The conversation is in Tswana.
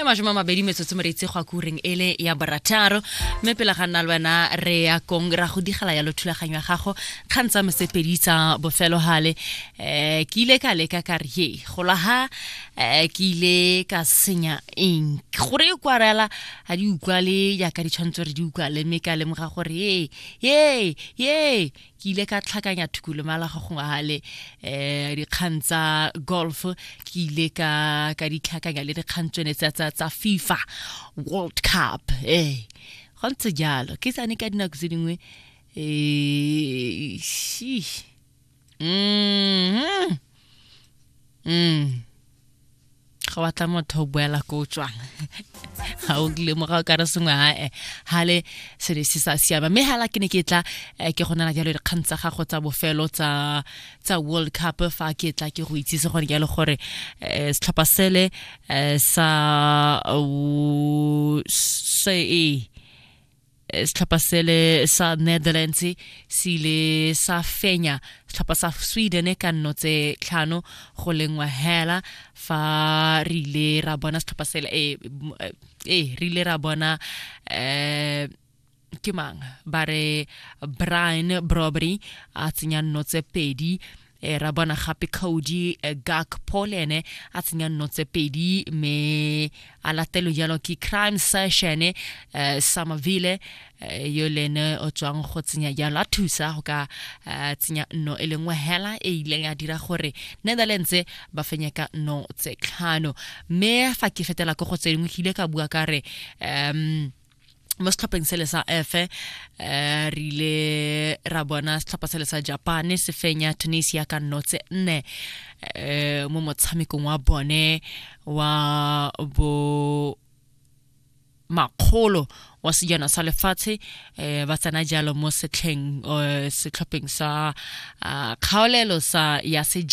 e mashome a mabedi metsotso moreitse go a kureng e le ya borataro mme pele ga nna le wena re ya kong ra go digela ya lothulaganyo ya gago kgang tsa mosepedi tsa bofelo gale um eh, ke ile ka leka ka re ye gola ga um eh, ke ile ka senya eng gore e kwarela ga di utlwa le yaka ditshwanetse re di utlwa le mme ka lemoga gore ye ye ye ke ile ka tlhakanya thukulomala go gongwe gale um eh, dikgang tsa golf ke ile ka ka ditlhakanya le dikgang tsone tsa tsa tsa fifa world cup ee eh, go ntse jalo ke sane ka dinako tse dingwe um mm-hmm. mm. ga wa tla motho o boela ko o tswang ga o lemoga o ka re sengwe ae ga le se ne se sa siama mme hala ke ne ke tla eh, ke go nana jalo dikgang tsa gago tsa bofelo tsa tsa world cup fa ke tla ke go itsise gone jalo gore eh, setlhopha sele eh, sa se e Eh, setlhopha sele sa netherlands se ile sa fenya setlhopha sa sweden ka nno tse tlhano go lengwa hela fa re ile ra bona setlhopha sele e eh, eh, re ile ra bona um ke mang ba re brian brobery a tsenya nno tse pedi e ra bona gape cody eh, gakpo le ene a tsenya nno tse pedi mme a latelo jalo ke crime session eh, samavile eh, yo le ene o tswang go tsenya jalo a thusa go ka eh, tsenya nno e lengwe hela e ileng ya dira gore netherlands ba fenye ka nno tse tlhano mme fa ke fetela ko go tse dingwe ke ile ka bua ka re um mo setlhopheng sele sa efe um eh, re ile ra bona setlhopha sele sa japane se fenya tunisia ka nnotse nne um mo motshamekong wa bone wa bo makgolo wa sejana sa lefatshe um ba tsena jalo mo setlheng um setlhopheng sa ah, kgaolelo sa ya sejana